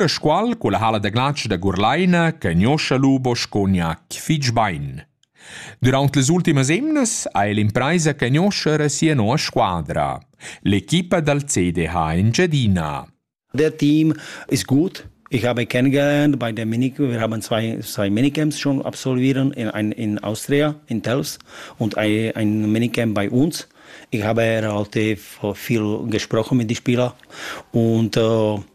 E squal culla hala da glatsch da Gurlaina che gnoscha lu bosco gnac fitg bein. Durant las ultimas emnas ha el impraisa che gnoscha era sia nova squadra, l'equipa dal CDH Engiadina. Der Team ist gut. Ich habe kennengelernt bei der Mini, wir haben zwei, zwei Minicamps schon absolvieren in, in, in Austria, in Tels und ein, ein Minicamp bei uns. Ich habe halt viel gesprochen mit den Spielern und äh,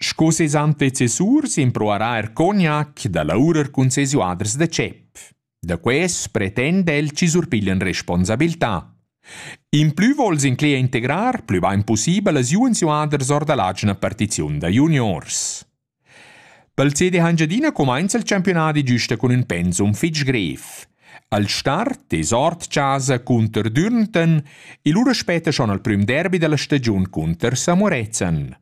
Sco ses antecessur s'improvarà er cognac da laurer cun ses uaders da tschep. Da quest pretenda el chi surpiglian responsabiltà. In plü vols incler e integrar plü bain pussibel as juens uaders or da l'agina partiziun da juniors. Pel CD Hangiadina cumainza il campionadi giusta cun ün pensum fich grev. Al start es ord chasa cunter Dürnten e lura spetta schon al prüm derbi da la stagiun cunter Samorezen.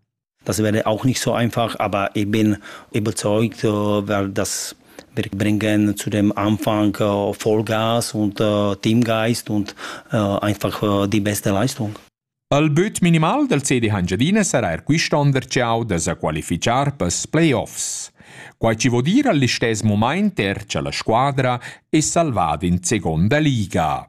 Das wäre auch nicht so einfach, aber ich bin überzeugt, weil das wir bringen zu dem Anfang äh, Vollgas und äh, Teamgeist und äh, einfach äh, die beste Leistung. Al büt minimal del CD Hangiadina sarà er quist'on derciau da sa qualificar pels playoffs. Quai ci vo dire all'istess moment er cha la squadra è salvada in seconda liga.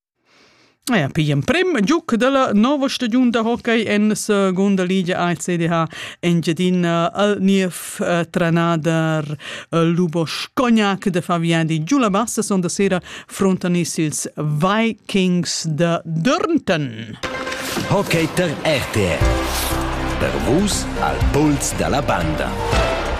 Ja, pigl emprem giuc dalla nova stagiun da hockey en secunda ligia ACDH Engiadina al niev eh, trenader eh, Lubos Cognac da fa viadi giu la bassa sonda sera frontanis ils Vikings da Dörnton. Hockey ter RTR. Per vus al puls dalla banda.